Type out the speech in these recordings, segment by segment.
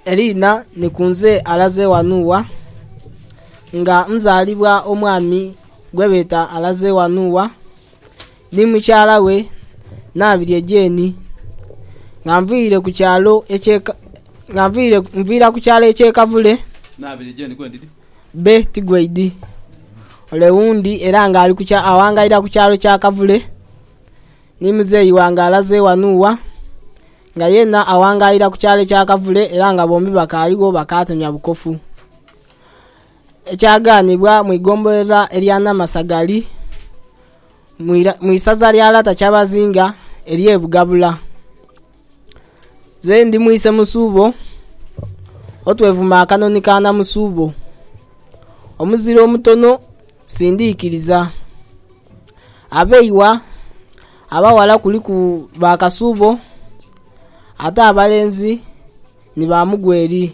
Eliina ni kunze alaze wanu wa? Nga nzaalibwa omwami gwebeeta alaze wanu wa? Ni mukyala we nabirye Jane. Nga nviire ku kyalo ekye nga nviire nviira ku kyalo ekye kavule bbe tigweidi ole wundi era nga ali awangaira ku kyalo kya kavule. Ni muzeeyi wange alaze wano wa, nga yeena awangaira ku kyalo ekya Kavule era nga bombi bakaaligho bakaatemya bukofu. Ekyagaanibwa mu igombolera erya Namasagali mu isaza lya Lata Kyabazinga ery'e Bugabula. Nze ndi mwise Musuubo, otwevuma akanoni ka Namusuubo. Omuzira omutono sindiikiriza. Abeighwa abaghala kuliku ba Kasuubo ate abalenzi ni ba Mugweri.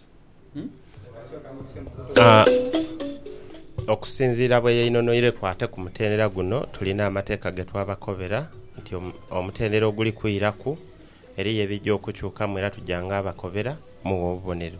Okusinziira bwe yainhonhoireku ate ku mutendera guno, tulina amateeka ge twabakobera nti omutendera oguli kwiraku eriyo ebija okukyukamu era tuja ng'abakobera mughe obubonero.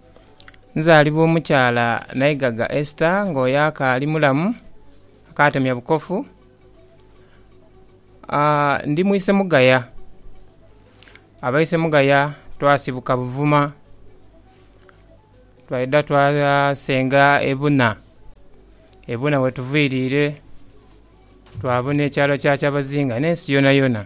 Nzaalibwa omukyala Naigaga Esther nga oyo akaali mulamu, akaatemya bukofu. Ndi mu isemugaya. Abaisemugaya twasibuka Buvuma, twaidha twasenga e Buna. E Buna wetuviiriire, twabona ekyalo kya Kyabazinga n'ensi yonayona.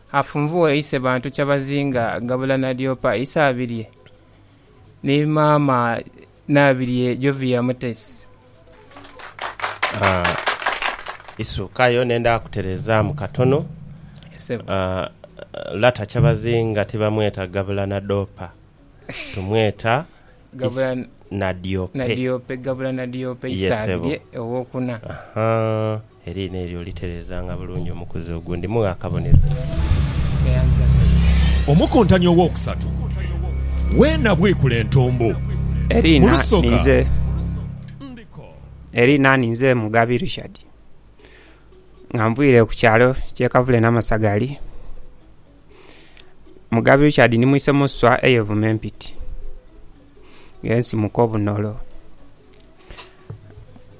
Afunvughe ise bantu kyabazinga gabula nadyopa ise abirye ni maama nabirye Jovia Mutesi. Isukayo nenda kuterezamu katono. Yes sebo. Lata kyabazinga tibamweta gabula nadoopa tumweta Gabula nadyope. nadyope gabula nadyope ise Yes sebo. abirye owokuna. Ahaa. Eriina eryo olitereezanga bulungi omukuzi ogwo. Ndimugha akabonero. Omukuntani owookusatu we nabwikula entumbu. Mu lusoga ndiko. Eriina ninze Mugabi Richard nga nviire ku kyalo ky'e Kavule Namasagali. Mugabi Richard ni mwise mu nswa ey'evuma empiti, ng'ensimuka obunolo.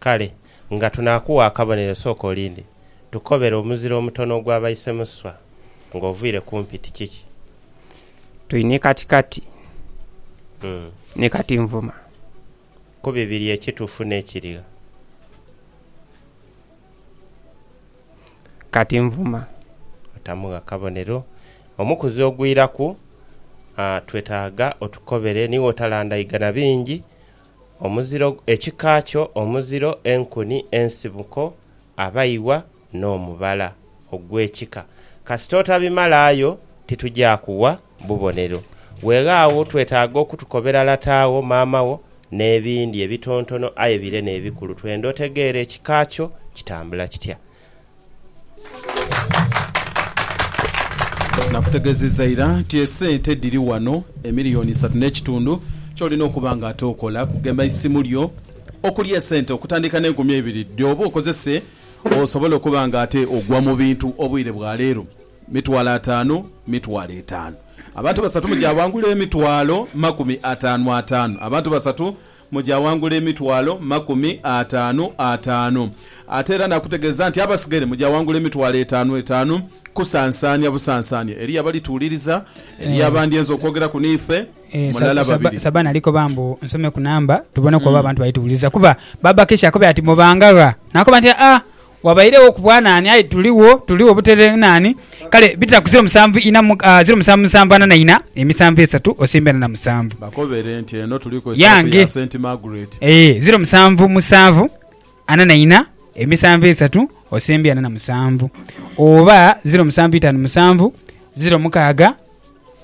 Kale, nga tunaakugha akabonero, sooka olinde. Tukobere omuzira omutono ogwa baisemuswa ng'oviire kumpi. Ti kiki? Tuli ni kati kati, ni kati nvuma. Ku bibiri ekitufu n'ekirigha. Kati nvuma. Otamugha kabonero. Omukuzi ogwiraku, twetaaga otukobere. Niwe otalandaiga na bingi. Omuziro, ekika kyo, omuziro, enkuni, ensibuko, abaiwa n'omubala ogw'ekika. Kasita otabimalaayo titugya kuwa bubonero. Weeghagho twetaaga okutukobera lata wo, maama wo n'ebindi ebitontono aye bire n'ebikulu twenda otegeere ekika kyo kitambula kitya. Nakutegeziza ira nti esente dhiri wano emiliyoni isatu n'ekitundu. Kyolina okuba nga ate okola kugema isimu lyo okuli esente okutandika n'enkumi eibiri dhooba okozese osobole okuba nga ate ogwa mu bintu obwire bwa leero. Mitwalo ataanu, mitwalo etaanu. Abantu basatu mujaawangula emitwalo makumi ataanu ataanu. Abantu basatu. mu gya wangula emitwalo makumi ataanu ataanu. Ate era naakutegeeza nti abasigaire mu gya wangula emitwalo etaanu etaanu, kusansaania busansaania. Eriyo abalituwuliriza, eriyo abandi enza okwogeraku n'ife, Eh, sa- mulala sa- babiri. Sabana ali koba mbu nsome ku namba tuboneku oba abantu balituwuliriza kuba baba Keisha akobera ati mubanga gha nakoba nti aa Wabairegho ku bwa naani? Aye tuligho, tuligho butereere naani? Kale bita ku ziro musanvu ina, ah, ziro musanvu musanvu ana na ina, emisanvu esatu osimbe ana na musanvu. Bakobere nti eno tuliku esaapu Yange. ya Saint Margaret. Ee, ziro musanvu musanvu ana na ina, emisanvu esatu osimbe ana na musanvu. Oba ziro musanvu itaanu musanvu, ziro mukaaga,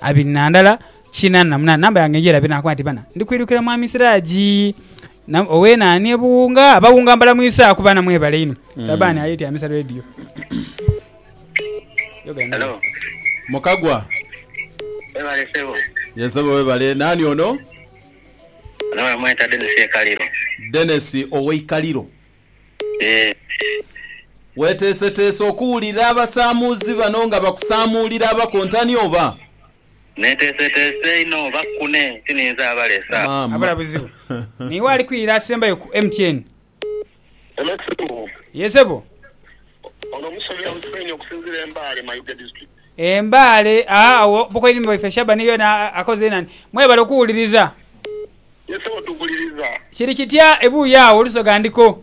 abiri na ndala, kinaana na munaana. Namba yange ngirabe, nakoba nti, Bana, ndi kwidukira Mwami Siraji. Nam owe nani ebuwunga abawunga mbalamwisa ku bana mwebale inho sabani aye tyamisa radio Hello. Mukagwa. Webale sebo. Ye sebo webale. Nani ono? Ono bamweta Dennis Ekaliro. Dennis oweikaliro. Eeh. Weteeseteese okuwulira abasamuuzi bano nga bakusamuulira abakontani oba? Neteeseteese inho oba kkune ti ninze abalesa. Abula buzibu. Niiwe ali kwirira asembayo ku MTN. Hello Sebo. Yee sebo. Ono omusomi awusibwa inho okusinzira e Mbale Mayuge District. E Mbale aa awo Bukoini waife Shabani yena akoze nani. Mwebale okuwuliriza. Yee sebo tubuliriza. Kiri kitya ebuuyi awo olusoga ndiko.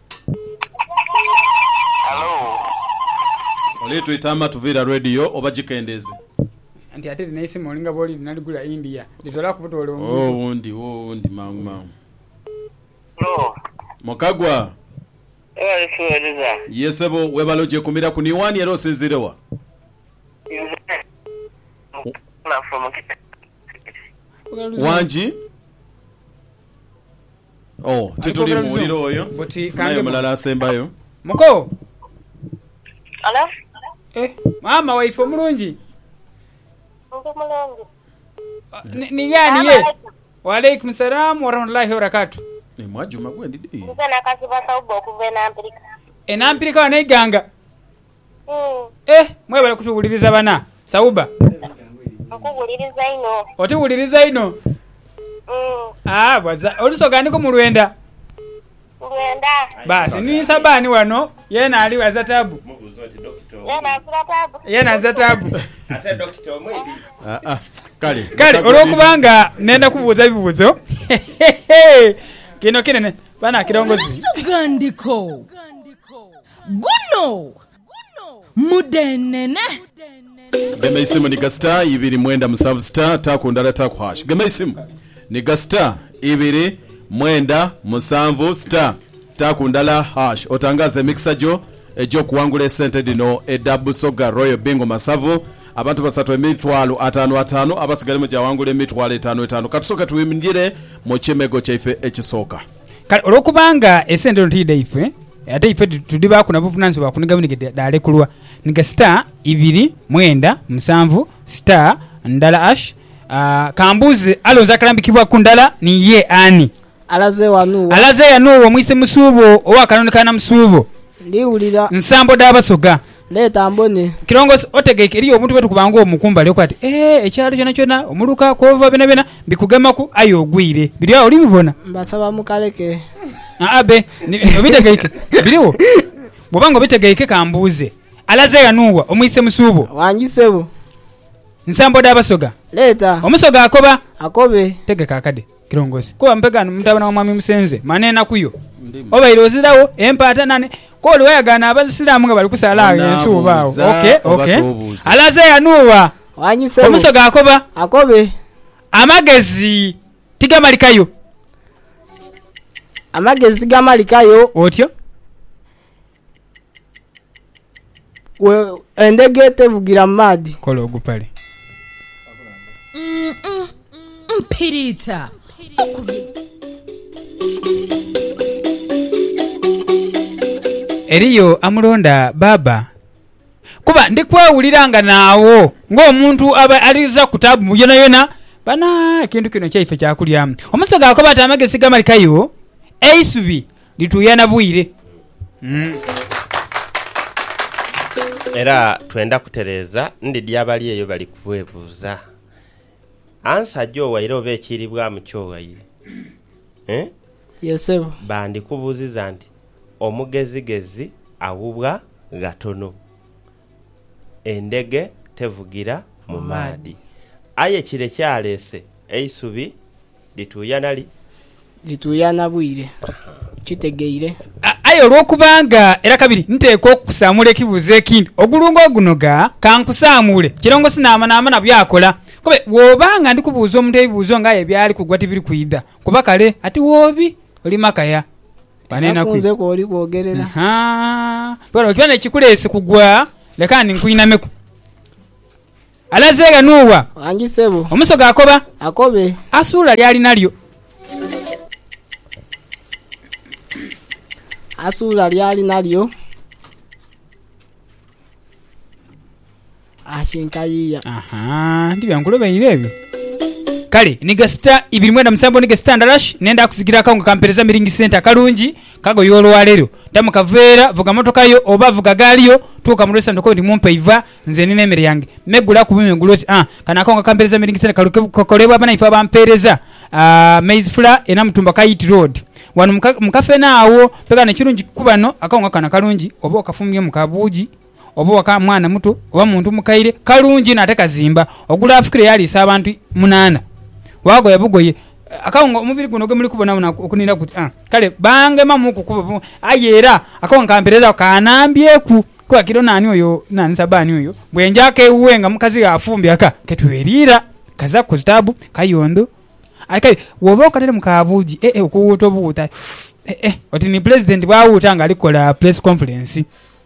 Oli twita amatu viira radio oba gikendeeze. Anti ate lino eisimu olinga bwoli lina ligula India litolaku butole omuntu. Wo wundi wo wundi mangu mangu. Mukagwa. Webale tuwereza. Ye sebo webale ojekumiraku ni wani era osinzire wa? Nze Mukagwa from Kitengela. Wangi. Oh, tituli muwulira oyo. Funayo mulala asembayo. Muko. Hello? Eh, maama waife omulungi. Ndi mulungi. Ni- Ni yani ye. Wa alaikum salam wa rahmatullahi wa barakatuh. Eh, mwajuma gwendi di. Nze nakazibwa sauba okuva enampirika. Enampirika wano eiganga. Eh mwebale kutubuliriza bana sauba. Nkubuliriza inho. Otubuliriza inho. Mm. Ah bwaza olusoga ndiko mu lwenda. Lwenda. Basi ni sabani wano yena ali waza tabu. Yena azira tabu. Yena azira tabu. Ate dokita omwidi. Ah ah. Kale. Kale olwokubanga nenda kubuuza bibuzo. Kino kinene bana kilongozi. Olusoga ndiko. Guno mudhenene. Gema eisimu ni ga star ibiri mwenda musanvu star taaku ndala taaku hash gema eisimu ni ga star ibiri mwenda musanvu star taaku ndala hash otangaaze emikisa gyo egy'okuwangula esente dhino edha Busoga Royal Bingo Masavu abantu basatu emitwalo ataanu ataanu abasigaire mujawangula emitwalo etaanu etaanu katusooke twimgire mu kimego kyaife ekisooka. Kale olwokuba nga esente dhino ti dhaife, ate ife tudhibaaku na buvunanyizibwa bwa kuniga bwinige dhaalekulwa. Niga star ibiri mwenda musanvu star ndala ash Ka mbuuze, alonze akalambikibwa ku ndala ni ye ani? Alaze wano wa? Alaze ghano wa Mwise Musuubo owa Kanoni ka Namusuubo, Ndiwulira. Nsambo dha Basoga. Leeta mbone. Kirongosi, otegeike eriyo obuntu bwe tukuba ng'omu ku mbali okuba ati, Ee, ekyalo kyonakyona, omuluka, kw'ova byonabyona bikugemaku, aye ogwire. Biri agho, olibibona. Mbasaba mukaleke. Aa, be. Ni, obitegeike. Birigho. Bw'oba nga obitegeike, ka mbuuze. Alaze ghano wa? Omwise mu suubo? Wangi, ssebo. Nsambo dha Basoga. Leeta. Omusoga akoba. Akobe. Tegeka akade. Kirongosi. Kuba mupegani mutabane wa mwami Musenze mani enaku yo obaire ozirawo empaata nane kwoli wayagaana abasiramu nga bali kusaala agho ensi oba agho. Ok ok. Alaze yanuuwa. Wangi sebo. Omusoga akoba. Akobe. Amagezi tigamalikayo. Amagezi tigamalikayo. Otyo. Gwe endege tevugira mu maadhi. Kola ogupale. Mpiriita okubye. Eriyo amulonda Baaba? Kuba ndi kwewulira nga naagho ng'omuntu aba aliza ku taabu yonayona. Bana, ekintu kino kyaife kya kulya. Omusawo gaakoba ati, Amagezi gamalikayo eisubi. Lituuyana bwire. Era twenda kutereeza ndidhi abali eyo bali kwebuuza, Ansa ajo waire oba ekiiribwamu kyo waire? Eeh? Ye sebo. Bandikubuuziza nti, Omugezigezi aghubwa ghatono. endhege tevugira mu maadhi. Aye kire kyaleese eisubi lituuyana li? Lituuyana bwire. Kitegeire? Aye olw'okubanga era kabiri nteekwa okukusaamuula ekibuuzo ekindi, ogulungo ogunoga ka nkusaamuule kirongosi naamanaamana by'akola. Kube bw'oba nga ndi kubuuza omuntu ebibuuzo ng'aye byali kugwa tibiri kwidha kuba kale ati woobi oli makaya. Era ku nze kw'oli kwogerera. Bona, bwe kiba n'ekikuleese kugwa, leka ndi nkwinameku. Alaze ghano owa? Wangi ssebo. Omusoga akoba? Akobe. Asuula ly'ali nalyo. Asuula ly'ali nalyo. akinkayiia. Aha, ndiba nkulobeire ebyo. Kale ni gasita ibiri mwenda musanvu ni gasita ndalash nenda kuzigira akawunga ka mpereza miringi sente akalungi kagoye olwalero. Dda mu kaveera, vuga motoka yo oba vuga gaali yo, tuuka mu restaurant kwendi mumpe eiva nze nina emere yange. Me, gula ku bime gule oti, ah, kano akawunga ka mpereza miringi sente kali kukolebwa abanaife aba mpereza, ah, maize flour e Namutumba Kayiti Road. Wano mu kafeene agho. Pe kano ekirungi ku bano, akawunga kano akalungi oba okafumbyemu ka buugi. oba waka mwana muto oba muntu mukaire, kalungi inho ate kazimba, ogula afukire yaliisa abantu munaana, waagoya bugoye akawunga omubiri guno gwe muli kubonabonaku okunira guti a Kale baangemamuku kuba bo, aye era akawunga kampereezaaku kanambyeku kuba kiro naani oyo naani Sabbaani oyo bwe njaaku ewuwe nga mukazi we afumbye aka ke tweriira kazaaku ku zitaabu kayondo. Aye kale bw'oba okateremu ka buugi e-e okuwuuta obuwuuta e-e oti ni Pulezidenti bw'awuuta ng'ali kukola Pulesi Konfulensi.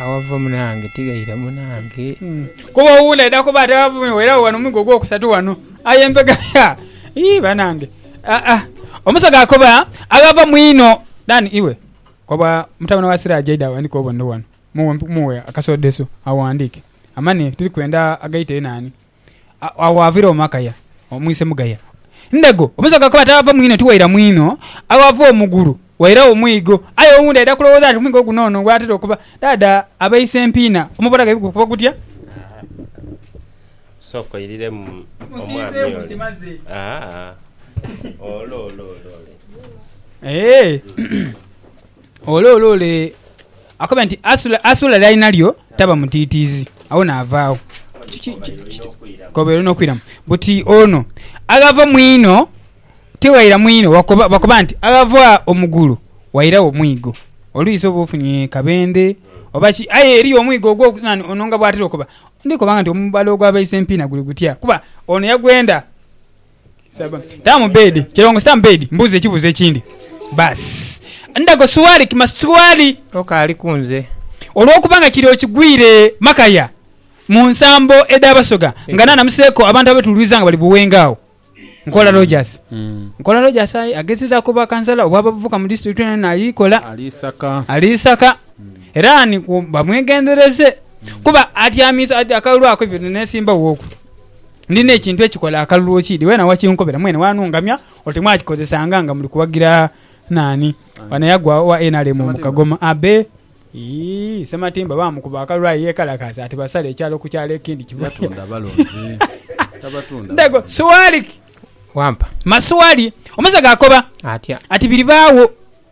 awava munange tigaire munange kuba owundi aidha kuba ate werawo wano mwigo ogwokusatu wano aye embega ya ii banange Ah, ah. omusaga akoba aghava mwino dani iwe koba mutabane wa siraje aidha awandike obonero wano muwe muwe akasodeso awandike amane turi kwenda agaite enani Agho ghaviira Omakaya omwise Mugaya Ndego. Omusawo kakuba ati aghava mwinho tiwaira mwinho, aghava omugulu wairagho mwigo. Aye owundi aidha kulowooza nti omwigo guno ono gwatera okuba. Dhaadha abeise empiina omubona ghaibwe gukuba gutya. Sooka oiriremu omwami ole. Ole, ole, ole. Ole ole ole! Akoba nti, Asula, asula lyali nalyo taba mutiitiizi. Agho naavaagho. Ki, ki, ki, ki, koba eno n'okwiramu. Buti ono aghava mu ino tighaira mu ino, wakoba, bakoba nti, aghava omu gulu wairagho mwigo. Oluisi oba ofunye kabendhe, oba ki, aye eriyo omwigo ogwo, nani ono nga bw'atera okoba. Ndikoba nga nti omubala ogwa baisempiina guli gutya, kuba ono yagwenda. Taamu bed kilongo sam bed mbuuza ekibuuzo ekindi baasi ndago suwali kima situwali Okaali ku nze. olwokuba nga kiri okigwire makaya mu nsambo edha basoga nga nanamuseeko abantu abetuluiza nga bali Buwenge agho Nkola Rogers Nkola Rogers aye agezezaku obwa kansala obwa bavubuka mu district eno yona aye kola Ali Isaka. ali Isaka era ni ku bamwegendereze kuba atyamiza akalwaku bino nesimba woku. Ndi n'ekintu ekikola akalulu okiidhi, weena wakinkobera mwene waanungamya oti mwakikozesanga nga muli kuwagira naani? Wano yagwa owa nrm mu Kagoma Abe ii Ssematimba baamukuba akalulu aye yeekalakaasa ati basale ekyalo ku kyalo ekindi kivayo. Ntego Suwali! Wampa. Masuwali! Omusaga akoba Atya? ati biribaagho.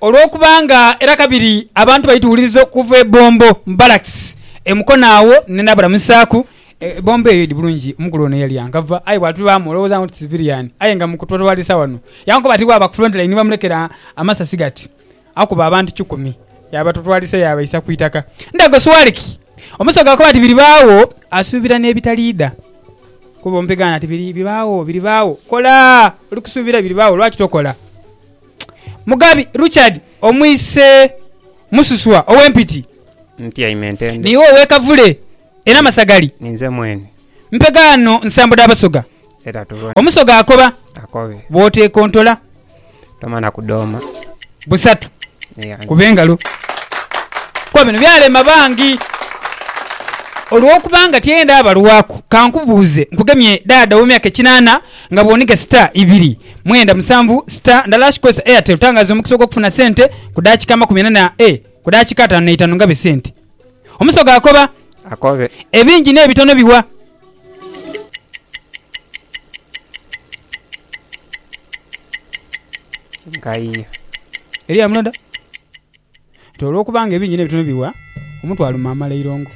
Olw'okuba nga era kabiri abantu baituwuliriza okuva e Bombo mu barracks e Mukono agho ni nabalamusaaku. E Bombo eyo idi bulungi omukulu ono yali yankava aye bwatubaamu olowooza nga oti civilian aye nga mukutwalisa wano yankoba ati bwaba ku front line bamulekera amasasi gati akuba abantu kikumi yabatutwalisa yabaisa ku itaka Ndago Swaliki omusoga akoba ati biribaagho asuubira n'ebitaliidha kuba ompegaano ati biri biribaagho biribaagho kola oli kusuubira biribaagho lwaki tokola? Mugabi Ruchard omwise Mususwa owe Mpiti. Ntyaime Ntende. Niiwe owe Kavule e Namasagali. Ninze mwene. Mpega ghano nsambo dha Basoga. Era tubone. Omusoga akoba. Akobe. Bw'oteekontola. Tomana kudooma. Busatu. Eya. Kuba engalo. Kuba bino byalema bangi. Olw'okuba nga tyenda balwaku, ka nkubuuze nkugemye daada ow'emyaka ekinaana nga bw'oniga sita ibiri. mwenda musanvu star ndala hash kozesa airtel tangaza omukisa ogwokufuna sente kudakika amakumi ana na e kudakika atano neitano ngabe sente omusoga akoba Akobe. ebingi nebitono biwa. Nkayiyo. Eriyo amulonda. Ti olw'okuba nga ebingi n'ebitono biwa, omuntu aluma amala eirongo.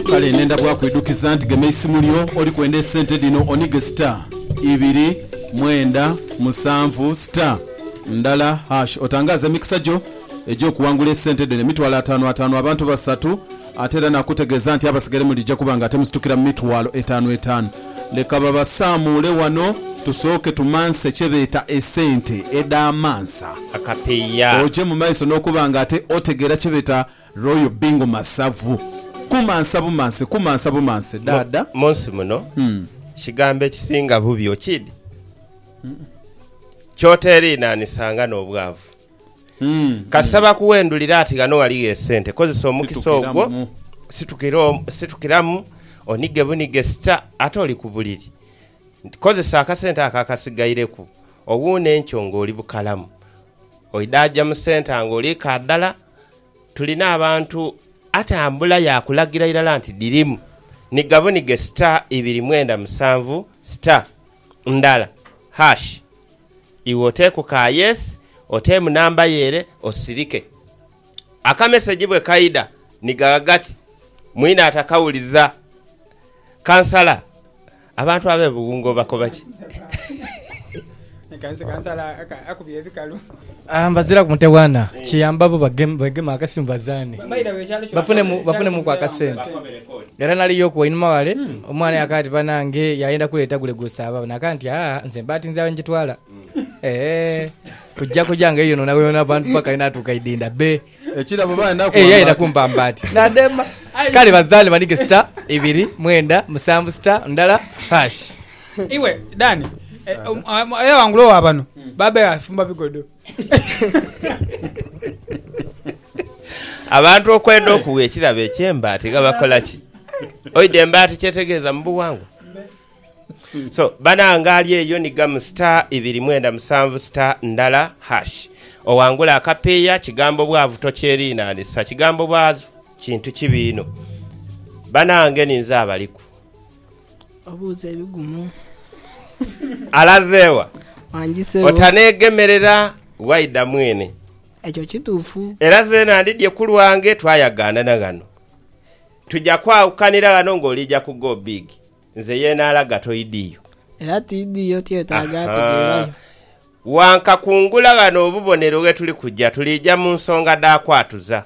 Kale nhenda bwakwidhukiza nti gema eisimu lyo oli kwenda esente dhino onige star ibiri mwenda musanvu star ndala hash otangaaze emikisa gyo egy'okuwangula esente dhino emitwalo ataanu ataanu abantu basatu. Ate era naakutegeeza nti abasigaire mulija kuba nga temusitukira mu mitwalo etaanu etaanu. Leka babasaamuule wano tusooke tumanse kye beeta esente edh'amansa. Akapiiya. Oje mu maiso n'okuba nga ate otegeera kye beeta Royal Bingo Masavu. Kumansa bumanse, kumansa bumanse, Mu, Dhaadha. mu nsi muno kigambo ekisinga bubi, okid, ky'oteeriinaanisanga n'obwavu. Kasita bakuwendulira ati ghano ghaligho esente, kozesa omukisa ogwo situkiramu onige bunige sita ate oli ku buliri. Kozesa akasente ako akasigaireku owuune enkyo ng'oli bukalamu. Oidhaaja mu senta ng'oli kaadhala. Tulina abantu atambula yaakulagira irala nti dhirimu, niga bunige sita ibiri mwenda musanvu sita ndala, hash. Iwe oteeku ka yes, oteemu namba yo ere osirike. Akameseji bwe kaidha ni gagha gati, Mwine atakawuliza. Kansala, Abantu abe Buwunga obakoba ki? Mbazira ku mutwe gwa na kiyamba bo begeme akasimu bazaane bafunemuku akasente. Era nali yoku wainuma wale, omwana yakaaba ati, Banange, yayenda kuleeta gule gw'osaaba. Nakaaba nti, Aa, nze mba tinze agho njitwala. Eeh, kujja kujja nga yeyononayonoona abantu paka yenatuuka idinda be. Ekirabo bayenda Eh, kuwamba yayenda ati. kumpamba ati. Nadema. Kale bazaane banige star, ibiri, mwenda, musanvu, star, ndala, hash. Iwe Dani, eh, um, um, aye wangula owa bano. Babaire afumba bigodo. Abantu okwenda okugha ekirabo eky'embaati ghabakola ki? Oidha embaati kyetegeeza mu bughangwa? So, banange ali eyo ni gamu star ibiri mwenda musanvu star ndala hash oghangule akapiiya. Kigambo bwavu tokyeriinanisa. Kigambo bwavu kintu kibi inho. Banange ni nze abaliku. Obuuza ebigumu. Alaze wa? Wanjise wo. Otaneegemerera waidha mwene. Ekyo kituufu. Era zeena ndidhye ku lwange twayagaanana ghano. Tuja kwawukanira ghano ng'oliija ku Go Big. Nze ye naalaga toidhiyo. Era tiidhiyo, tyetaaga ategeerayo. Wankakungula ghano obubonero ghe tuli kuja, tuliija mu nsonga dha kwatuza.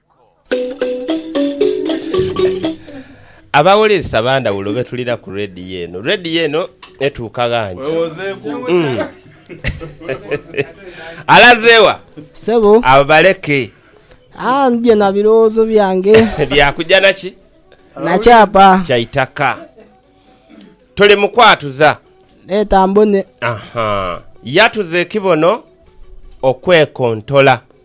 Abawoleresi aba ndhawulo betulira ku leediyo eno. Leediyo eno etuuka ghangi. Alaze wa? Sebo. Abo baleke. Aa, ndhidhye na birowoozo byange. Bya kuja na ki? Na kyapa. Kya itaka. Toli mu kwatuza. Leeta mbone. Aha. Yatuza ekibono okwekontola.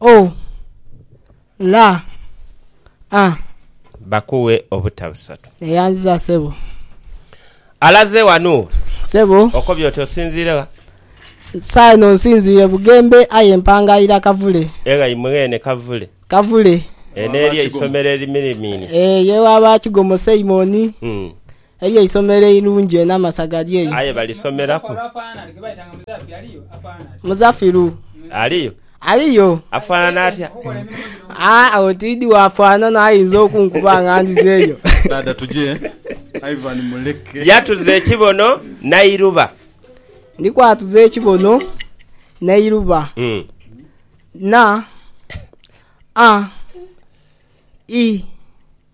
O, la, a. Bakuwe obuta busatu. Neyanziza sebo. Alaze wano. Sebo. Okobye oti osinziire gha? Saagha eno nsinziire Bugembe aye mpangaira Kavule. Eghayi mweene Kavule. Kavule. Eno eri eisomero erimirimiine. Eyo ewa ba Kigomo Simon. Eriyo eisomero eirungi enho amasaga gali eyo. Aye balisomeraku. Muzafiru. Aliyo? Aliyo. Afanana atya? Aah agho tidhi wafanana aye oinza okunkuba nga ndhizeyo. Dhaadha tuje, Ivan muleke. Yatuza ekibono nairuba. Ndi kwatuza ekibono nairuba. Na, a, i,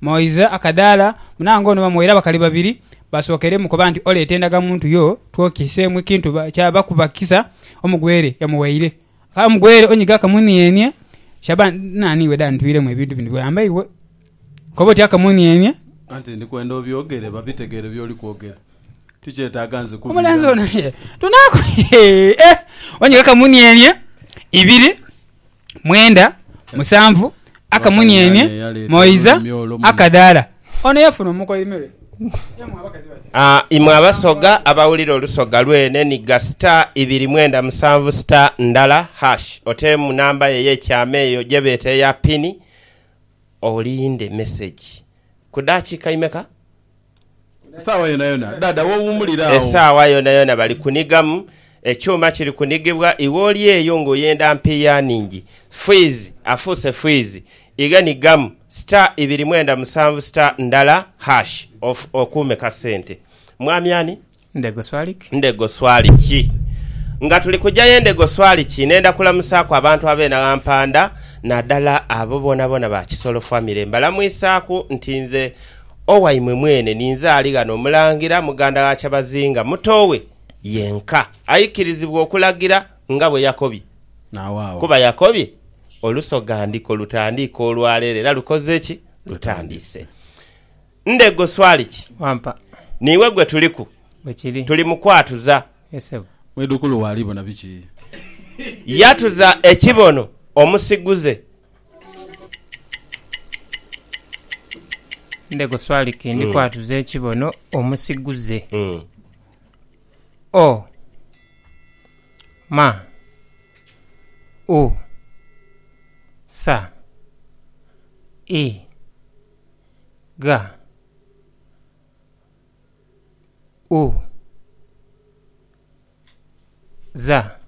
Moise akadaala, munange ono bamuwaire abakali babiri basookere mu koba nti oleeta endaga muntu yo twokiseemu ekintu kyaba kuba kisa omugwere yamuwaire. Kale omugwere onyiga akamunienie Shaban nani iwe da ntwiremu ebintu bino byoyamba iwe koba otya akamunienie. Anti ndi kwenda obyogere babitegere byoli kwogera tikyetaaga nze Omulenzi kubiiramu. ono ye tunaaku hee eh onyiga akamunienie ibiri mwenda, musanvu, akamunienie, moiza, akadaala. Ono yafuna omukoimirwe. Aa, imwe abasoga abawulira olusoga lwe n'enigga star ibiri mwenda musanvu star ndala hash, oteemu namba yo ey'ekyama eyo gye beeta eya pini, olinde mesegi. Ku daakiika imeka? Esaawa yonayona Dhaadha w'owuumulira agho. Esaawa yonayona bali kunighamu, ekyuma kiri kunigibwa, iwe oli eyo nga oyenda mpiiya nhingi, fwiizi afuuse fwiizi, ighe nighamu star ibiri mwenda musanvu star ndala hash okuume kasente. Mwami ani? Ndego swali ki? Ndego swali ki? Nga tuli kuja ye Ndego swali ki nenda kulamusaaku abantu ab'enaghampanda nadala abo bonabona ba Kisolo famire mbalamwisaaku nti nze owaimwe mwene ninze ali ghano Omulangira muganda gha Kyabazinga muto we yenka aikirizibwa okulagira nga bwe yakobye kuba yakobye olusogandiko lutandiike olwaleero era lukoze ki? Lutandiise. Ndhego swali ki? Wampa. Niiwe gwe tuliku. Bwe kiri. Tuli mu kwatuza. Ye ssebo. Mwidhukulu wo ali bona biki? Yatuza ekibono omusiguze. Ndhego swali ki? Ndi kwatuza ekibono omusiguze. O, ma, u, sa, i. gha u za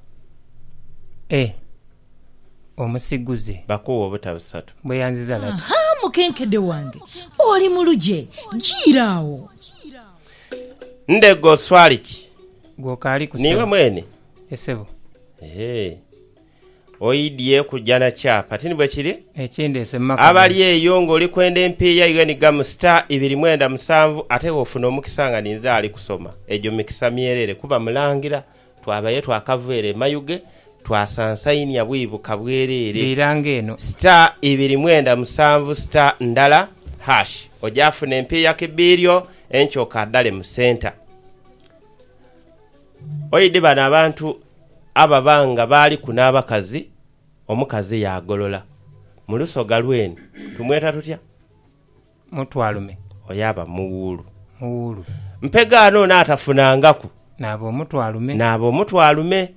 e omusiguze. Bakuuwe obuta busatu. Bweyanziza lata. Ha, mukenkede wange, oli mu lugye. Jiira agho. Ndhego oswali ki? Gwe okaali ku ssebo? Niiwe mwene? Ye ssebo. Eehh. Oidhie kuja na kyapa, ti ni bwe kiri? Ekindeese mu maka gano. Abali eyo ng'oli kwenda empiiya yo enhigamu star ibiri mwenda musanvu ate bw'ofuna omukisa nga ninze ali kusoma, egyo mikisa myereere kuba Mulangira twabayo twakava ere e Mayuge twasansainia bwibuka bwereere. Riira ng'eno. Star ibiri mwenda musanvu star ndala hash oja funa empiiya ki biiryo enkyo okaadhale mu centre. Oidhi bano abantu ababa nga baaliku n'abakazi, omukazi yaagolola. Mu lusoga lwenu tumweta tutya? Mutwalume. Oyo aba muwuulu. Muwuulu. Mpegaano ono atafunangaku. Naaba omutwalume. Naaba omutwalume.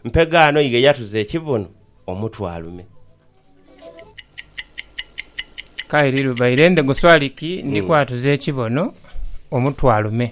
Mpegaano ye yatuza ekibuno omutwalume. Kairi lubaire ndhe guswali ki, ndi kwatuza ekibuno omutwalume.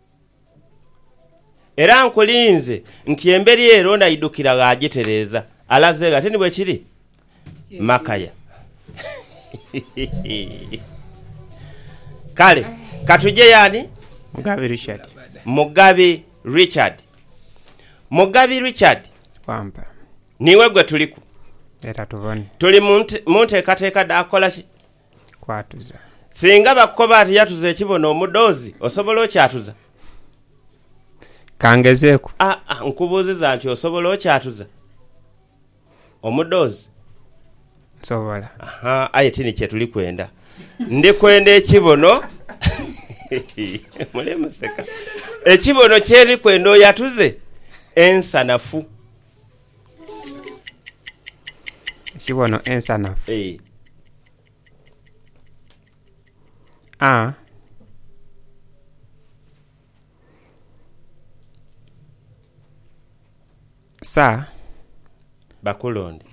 Era nkulinze nti emberi ere onaidhukira gh'agitereeza. Alaze gha? Tini bwe kiri? Makaya. Kale ka tuje y'ani? Mugabi Richard. Mugabi Richard. Mugabi Richard. Wampa. Niiwe gwe tuliku. Leta tubone. Tuli mu nteekateeka dha kukola ki? kwatuza. Singa bakukoba ati yatuza ekibono omudhozi, osobola okyatuza? Ka ngezeeku. Aa, nkubuuziza nti osobola okyatuza omudhozi? Nsobola. Aha, aye ti ni kye tuli kwenda. Ndi kwenda ekibono. Muli museka. Ekibono kye ndi kwenda oyatuze ensanafu. Ekibono ensanafu. Ee. A, sa. Bakulonde.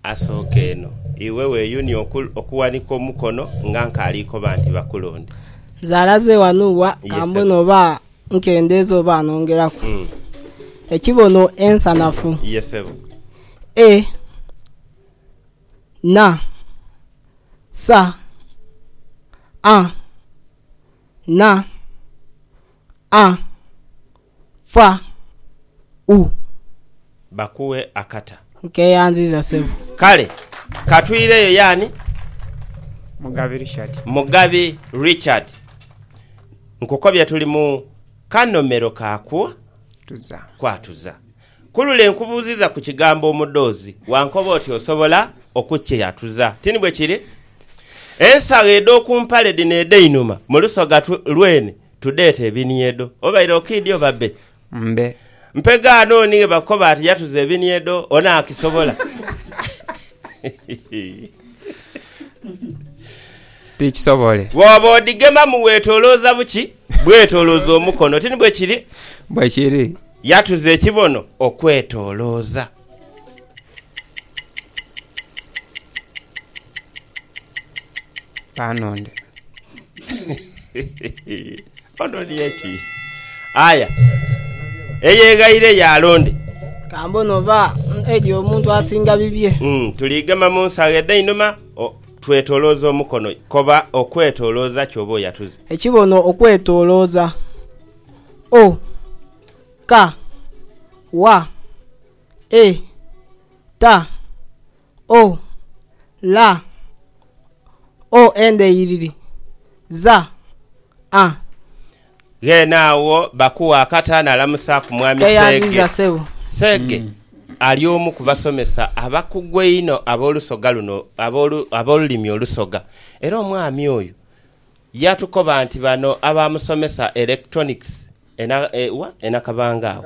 Asooka eno, iwe weeyunie okuwanika omukono nga nkaali koba nti bakulonda. Nze alaze wano wa, ka mbone oba nkendeeza oba nongeraku. Ekibono ensanafu. E na sa a na a Fa u. Bakughe akata. Nkeyanziza sebo. Kale ka twireyo y'ani? Mugabi Richard. Mugabi Richard. Nkukobye tuli mu kanomero ka ku. Tuza. Kwatuza. Ku lule nkubuuziza ku kigambo omudoozi, wankoba oti osobola okukyatuza. Ti ni bwe kiri? Ensagho edh'oku mpale dhino edh'einhuma mu lusoga lwene. Tudheete ebinhiedo obaire okiidhi oba be? Mbe. Mpe gaano oni ghe bakoba ati yatuza ebinhiedo, onaakisobola? Tikisobole. Bw'oba odhigemamu weetoolooza buki? Bwetoolooza omukono. Ti ni bwe kiri? Bwe kiri. Yatuza ekibono okwetoolooza. Panonde. Ononye ki? Aya. Eyeghaire y'alonde. Ka mbone oba Edi omuntu asinga bibye. Mm, tuli gema mu nsaagho edh'einhuma, o- twetolooza omukono. Koba okwetolooza ky'oba oyatuze. Ekibono okwetolooza. O! Ka, wa, e, ta, o, la, o endheiririri, za, a. Ghene agho Bakuwa akata n'alamusaaku Mwami Seege. Tweyanziza Ssebo. Seege ali omu ku basomesa abakugu einho ab'olusoga luno ab'olu, ab'olulimi Olusoga. Era omwami oyo yatukoba nti bano abaamusomesa electronics Ena kabanga agho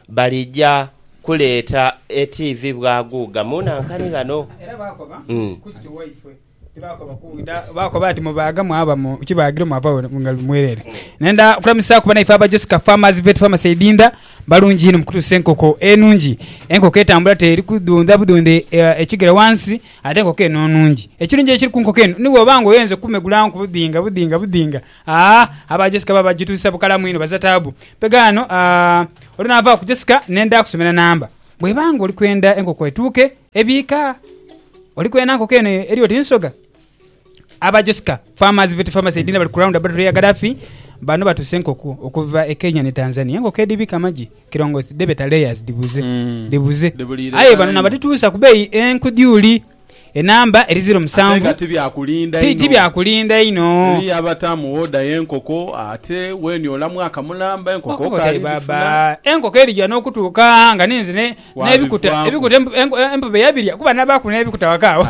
balija kuleeta etiivi bwaguuga mu nankani ghano. Era baakoba ku kiti waifwe ti baakoba ku ida. Baakoba ati, Mubaaga mwaba mu kibaagiro mwava wano nga luli mwereere. Nenda kulamusaaku banaife aba Josica Farmers Vet Pharmacy e Inda. Balungi inho mu kutuusa enkoko enungi. Enkoko etambula teri kudhondha budhondha ekigere wansi ate enkoko eno nungi. Ekirungi ekiri ku nkoko eno ni bwoba nga oyenze kumegula nkubudhinga budhinga budhinga Aah aba Jessica baba bagituuzisa bukalamu inho baza taabu. Mpegho ano aah. Olwo naava ku Jessica ne nda kusomera namba. Bw'eba nga oli kwenda enkoko etuuke ebiika? Oli kwena nkoko eno eri oti nsoga? Aba Jessica Farmers Vet Pharmacy Edina bali ku Round About ya Gadaffi. Bano batuusa enkoko okuva e Kenya ni Tanzania. Enkoko edhibiika amagi kirongosi dhebeeta layers dhibuze. Dhibuze. Aye bano nabadhituusa ku beeyi enku dyuuli. enamba eri ziro musanvu tiji bya kulinda inho. Okubutayo baaba, enkoko erija n'okutuuka nga ninze n'ebikuta empobe yabirya kuba nabaaku n'ebikuta waka agho.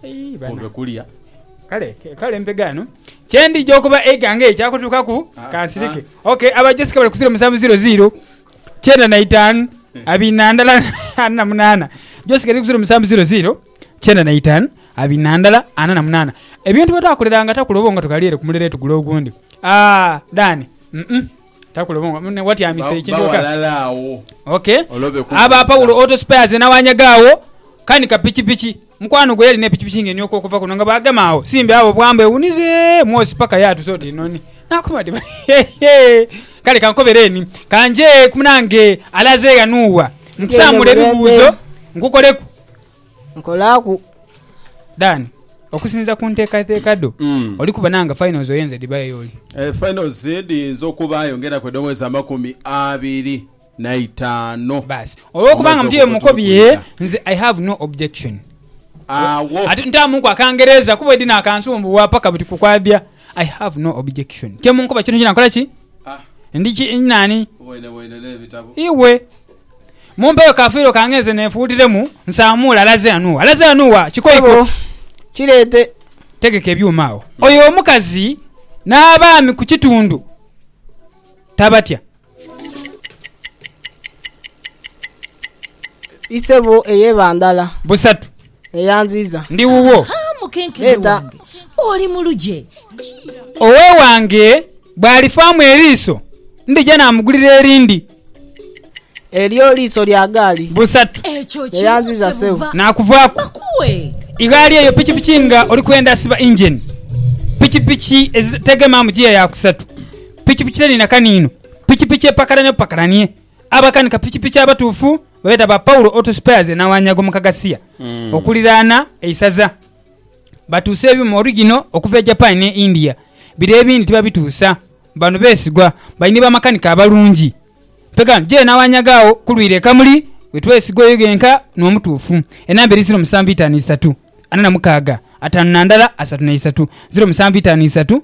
Aii banange! Kale mpe gaano kye ndija okuba eighanga eryo kyakutuukaku kansirike. Ok, Abajosi ke bali ku ziro musanvu ziro ziiro. kyenda na itaanu abiri na ndala ana na munaana josi kati kusira omusanvu ziro ziro kyenda na itaanu abiri na ndala ana na munaana ebintu bwetakuleranga takula obongo tukalire kumulere tugule ogundi ah dani mm takula obongo mune watyamise Ba- ekintu oka bawalala agho okay Olwo be kubuuza. aba paulo auto spares nawanyagaawo kani kapikipiki Mukwano gwe yalina epikipiki ng'enhooka okuva kuno nga bw'agema agho Simbi awo bwa mbu ewunize mwosi paka yaatusa oti nhoni. N'akoba ati, Hehe! Kale kankobereeni, ka nje ku munange alaze ghanugha nkusaamule ebibuuzo nkukoleku. Nkolaaku. Dan, okusinziira ku nteekateeka dho, oli kubona nga finals oyenze dhibayo y'oli? Finals dhiyinza okubaayo ng'enaku edh'omwezi amakumi abiri. na itaano. Baasi. Olw'okuba nga mutyo bye mukobye, nze I have no objection. Agho. Ate ntaamuku Akangereza kuba edina akansumbuwa paka buti ku kwabya. I have no objection. Kye munkoba kyonakyona nkola ki? Ndi ki? Ndi naani? Iwe. Mumpeyo ka fiiro kange nze neefuutiremu, nsaamuule alaze ghano wa? Alaze ghano wa? Kikoiko. Ssebo, kireete. Tegeka ebyuma agho. Oyo omukazi n'abaami ku kitundu tabatya. Isebo ey'eba ndala. Busatu. Eyanziiza. Ndi wuwo. Ha, mukenkede Leta. wange, oli mu lugye. Owewange bw'alifaamu eriiso, ndija naamugulira erindi. Elyo liiso lya gaali. Busatu. Ekyo kimu, Eyanziiza Sebo. Sebuva. Naakuvaaku. Bakuwe. Igaali eyo pikipiki nga oli kwenda siba injeni. Pikipiki ezitegema mu giya ya kusatu. Pikipiki terina kaniino, pikipiki epakaranhe bupakaranhie. Abakanika pikipiki abatuufu babeeta ba Paulo Auto Spares e Nawanyago mu Kagasia okuliraana eisaza. Batuusa ebyuuma origino okuva e Japan n'e India, bire ebindi tibabituusa. Bano beesigwa, bali ni bamakanika abalungi. Mpegaano je Nawanyago agho ku lwire e Kamuli we twesigwa oyo yenka n'omutuufu. Enamba eri ziro musanvu itaanu isatu, ana na mukaaga, ataanu na ndala, asatu na isatu. Ziro musanvu itaanu isatu,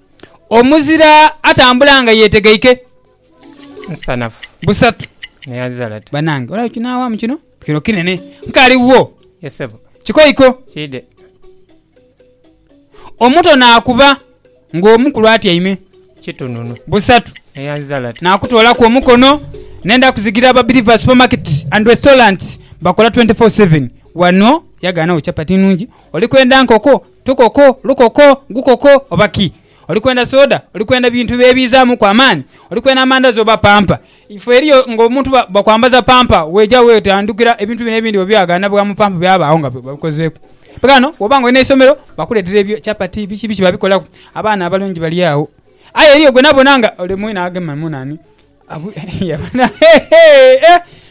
Omuzira atambula nga yetegeike. Nsanafu. Busatu. Neazalati. Banange olaba kinawamu kino kino kinene nkali wo. Yesebo. Kikoiko. Kide. Omuto nakuba nga omukulu atyaime. Kitununu. Busatu. Neazalati. Nakutolaku omukono nenda kuzigira aba Biriva Supermarket and Restaurant bakola 24/7 wano yaganawo chapati nungi oli kwenda nkoko Tukoko, lukoko, gukoko oba ki? Oli kwenda soda? Oli kwenda bintu ebiizaamuku amaani? Oli kwenda amandazi oba pampa? Ife eriyo ng'omuntu bakwambaza pampa weeja weetandikira ebintu bino ebindi bwe byagaana bwa mu pampa byabaagho nga babikozeeku. Aye ghano bw'oba ng'oli n'eisomero bakuleetera ebyo chapati biki biki babikolaku abaana abalungi bali agho. Aye eriyo gwe nabona nga ole mwine agema mu nani.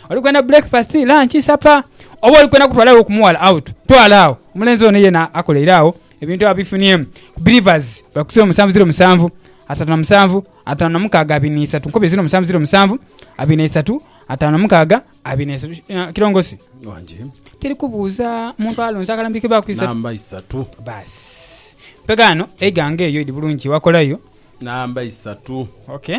Oli kwenda breakfast, lunch, supper oba oli kwenda kutwala gho ku mughala out? Twala agho. Omulenzi ono yena akoleire agho ebintu abifuniemu. Ku Believers bali ku siro musanvu ziro musanvu, asatu na musanvu, atanu na mukaaga, abiri na isatu. Nkubye ziro musanvu ziro musanvu, abiri na isatu, atanu na mukaaga, abiri na isatu. Eh, Kilongosi, Wangi. teri kubuuza muntu alonze akalambike baaku isatu. Namba isatu. Baasi. Mpegha ghano eighanga eyo idi bulungi wakolayo. Namba isatu. Okay.